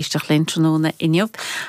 éisteacht linn tráthnóna inniu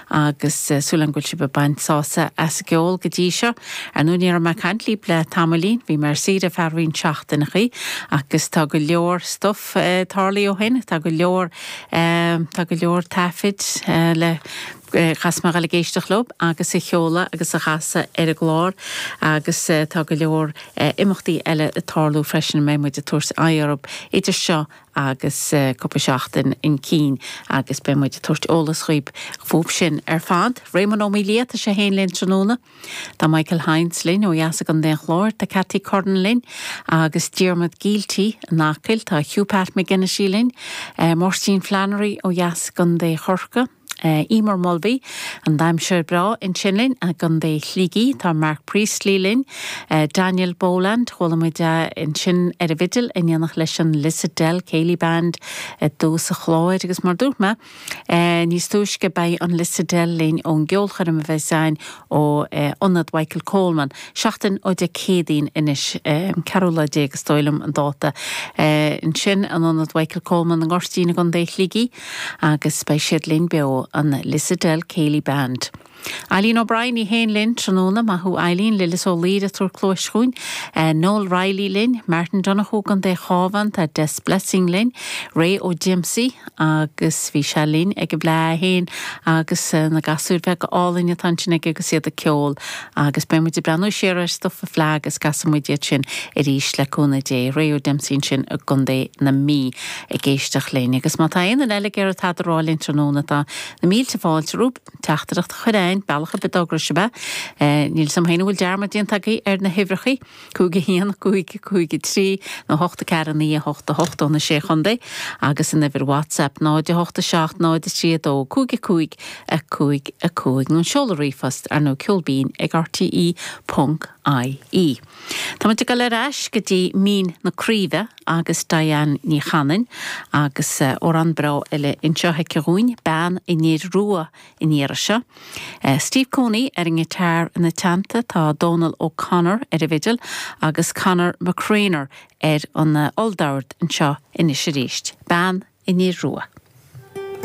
agus súil agam go bhfuil sibh ag baint sásamh as an gceol go dtí seo. Ar ndóigh, ní raibh mé ag caint líb le tamaillín, bhí mé ar saoire ar feadh roinnt seachtaineachaí agus tá go leor stuif tarlaithe ó shin, tá go leor tá go leor taifid eile a chaithfeas mé a dhul ag éisteacht leo agus a sheoladh agus a chasadh ar an gclár agus tá go leor imeachtaí eile ag tarlú freisin a mbeidh muid ag tabhairt aghaidh orthu idir seo agus cúpla seachtain chun cinn agus beidh muid ag tabhairt eolas dhaoib fúb sin ar fad. Réamonn Ó Maoildhia, tá sé fhéin linn tráthnóna. Tá Michael Hynes linn ó dheas i gContae an Chláir, tá Cathy Curran linn agus Diarmuid Gielty in Acaill, tá Hugh Pat McGinnity linn, Máirtín Flannery ó dheas i gContae Chorcaí, Emer Mulvey, an damhsóir breá ansin linn, i gContae Shligigh. Tá Mark Priestley linn. Daniel Boland, Chuala muid é ansin ar an bhfidil in éineacht leis an Lissadell Céilí Band i dtús an chláir agus mar dúirt mé níos túisce beidh an Lissadell linn ón gceolchoirm a bheas againn ó Ionad Mhichael Coleman, seachtain ó Dé Céadaoin anois, an 14 lá is dóigh liom an dáta. Ansin in Ionad Mhichael Coleman i nGoirtín i gContae Shligigh. Agus beidh siad linn beo, an Lissadell Céilí Band. Eileen O'Brien, í féin linn tráthnóna, maith thú Eileen, Lillis Ó Laoire ag tabhairt cluais chugainn, Noel Reilly linn, Martin Donohoe i gContae an Chabháin, tá Des Blessing linn, Ray Ó Diomsaigh agus bhí sé linn ag an bhFleá é féin agus na gasúir bheaga álainn atá ansin aige agus iad ag ceol agus beidh muid ag breathnú siar ar stuif an Fleá agus casfaidh muid iad sin arís le cúnamh Dé, Ray Ó Diomsaigh ansin i gContae na Mí. ag éisteacht linn, agus má tá aon duine eile ag iarraidh tada a rá linn tráthnóna, tá na mílte fáilte romhaibh. Teachtaireacht a chur chugainn, bealach ar bith a thograíos sibh é. Níl 's agam féin an bhfuil dearmad déanta agaibh ar na huimhreachaí, cúig a haon, cúig, cúig a trí, nó ocht a ceathair, a naoi, a hocht, a hocht, ó na Sé Chontae, agus an uimhir WhatsApp, 0 a hocht a seacht, 0 a trí a dó, cúig a cúig, a cúig a cúig, nó an seoladh ríomhphost, ar ndóigh ceol binn ag rte. Ponc, ie. Tá muid ag dul ar ais go dtí Mín na Craoibhe agus Diane Ní Chanainn agus amhrán breá eile anseo aici dhúinn, Bean an Fhir Rua an iarraidh seo. Steve Cooney ar an ngiotár ina teannta, tá Dónal O'Connor ar an bhfidil agus Conor McCreanor ar an olldord anseo anois arís, Bean an Fhir Rua.